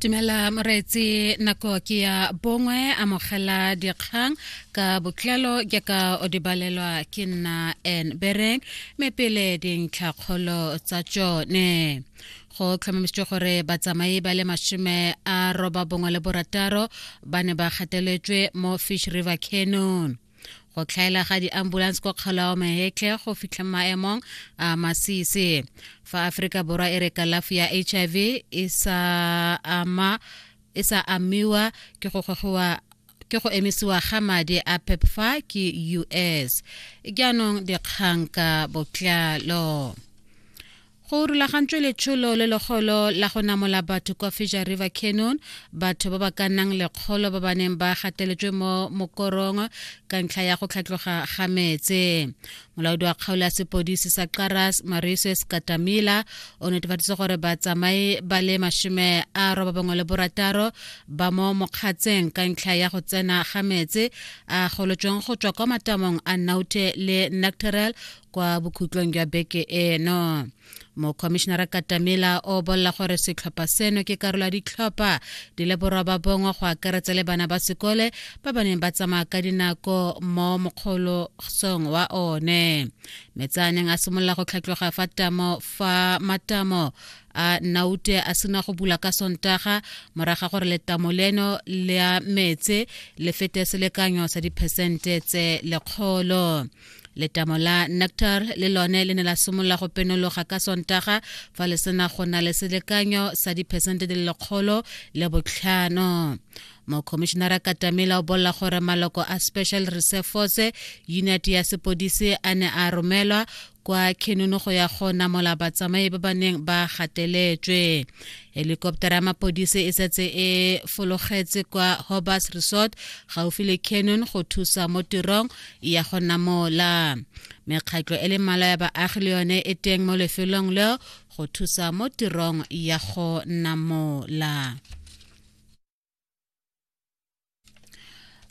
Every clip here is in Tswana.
Dumela moreetsi nako ke ya bongwe amogela dikgang ka botlalo jaaka o di balelwa ke nna en bereng mme pele dintlhakgolo tsa tsone go tlhomamisitswe gore batsamai ba le mashome a roba bongwe le borataro ba ne ba gateletswe mo fish river canon go tlhaela ga di-ambulance ko kgalawa mahetlhe go fitlha maemong a masisi fa aforika borwa e re kalafi ya h i v e sa ama e sa amiwa ke go gogiwa ke go emisiwa ga madi a pepfa ke us jaanong dikgang ka botlalo Go rulagantswe letsholo le legolo la go namola batho kwa Fissure River Canyon, batho ba ba ka nnang lekgolo ba ba neng ba gateletswe mo mokorong ka ntlha ya go tlhatloga ga metse. Molaodi wa kgaolo ya sepodisi sa Karas, Maurices Katamila, o netefaditse gore batsamai ba le mashome a robabongwe le borataro ba mo mokgatseng ka ntlha ya go tsena ga metse a golotsweng go tswa kwa matamong a Naute le Nacterel kwa bokhutlong jwa beke eno mokhomišenara katamela o bolela gore setlhopha seno ke karolo ya ditlhopha di le borwa ba bongwe go akaretsa le bana ba sekole ba ba neng ba tsamaya ka dinako mo mokgolosong wa one metsi a neng a simolola go tlhatloga fa tamo fa matamo a naute a sena go bula ka sontaga moraga gore letamo leno la metse le fete selekanyo sa diphesente tse lekgolo letamo la nectar le lone le ne la simolola go penologa ka sontaga fa le sena go na le selekanyo sa diphesente di le lekgolo le botlhano mokhomišenara katamela o bolela gore maloko a special reserve force unit ya sepodisi a ne a romelwa kwa khenone go ya go namola batsamai ba ba neng ba gateletswe helikoptara ya mapodisi e setse e fologetse kwa hobas resort gaufi le canon go thusa mo tirong ya go nna mola mekgatlo e le mmalwa ya baagi le yone e teng mo lefelong leo go thusa mo tirong ya go nna mola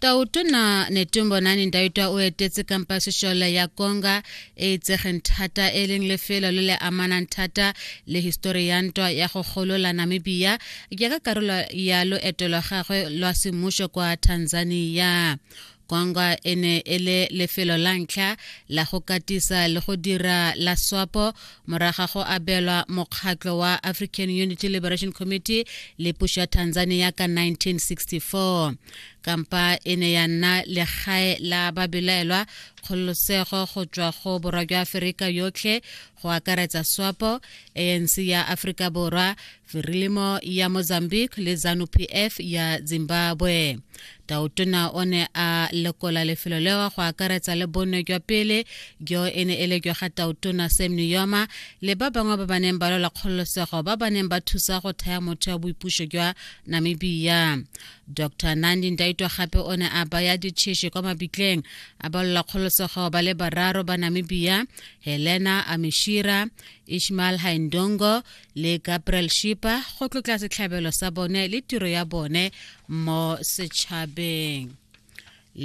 tautona netumbonani ndaitwa o etetse kampase šola ya konga e itsegeng thata e leng lefelo le le amanang thata le histori ya ntwa ya go golola namibia jaaka karolo ya loeto lwa gagwe lwa semmušo kwa tanzania Kwangwa e ne e le lefelo la ntlha la go katisa le go dira la swapo moraga go abelwa mokgatlho wa African Unity Liberation Committee le puso ya Tanzania ka 1964. Kampa e ne ya nna legae la babelaelwa kgololosego go tswa go borwa jwa Aferika yotlhe go akaretsa swapo, ANC ya Aferika Borwa, Frelimo ya Mozambique le Zanu PF ya Zimbabwe. Tautona o ne a lekola lefelo leo go akaretsa le bonno jwa pele jo e ne e le jwa ga Tautona Sam Nujoma le ba bangwe ba ba neng ba lwela kgololosego ba ba neng ba thusa go thaya motho wa boipuso jwa Namibia. Dr Nandi Ndaitwa gape o ne a baya ditšheshe kwa mabitleng a balwela kgololosego ba le bararo ba Namibia, Helena Amishira, Ishmael Haindongo le gabriel shipa go tlotla setlhabelo sa bone le tiro ya bone mo setšhabeng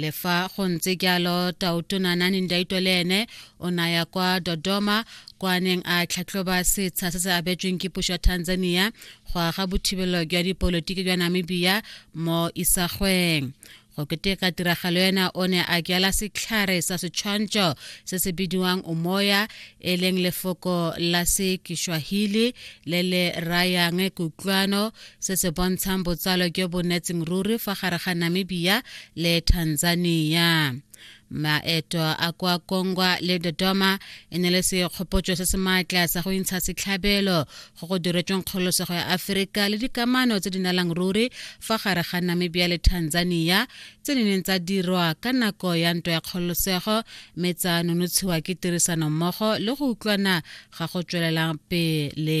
le fa go ntse jalo tautona naning daito le ene o naya kwa dodoma kwa neng a tlhatlhoba setsha se se abetsweng ke puso ya tanzania go aga bothibelo jwa dipolotiki jwa namibia mo isagweng go keteka tiragalo ena o ne a jala setlhare sa setshwantsho se se bidiwang umoya e leng lefoko la sekishwahili le le rayang kutlwano se se bontshang botsalo jo bo netseng ruri fa gare ga namibia le tanzania maeto a kwa kongwa le dodoma e ne le sekgopotso se se maatla sa go intsha setlhabelo go go diretsweng kgololosego ya aforika le dikamano tse di nalang ruri fa gare ga namibia le tanzania tse di neng tsa dirwa ka nako ya ntwa ya kgololosego mme tsa nonotshiwa ke tirisanommogo le go utlwana ga go tswelelang pele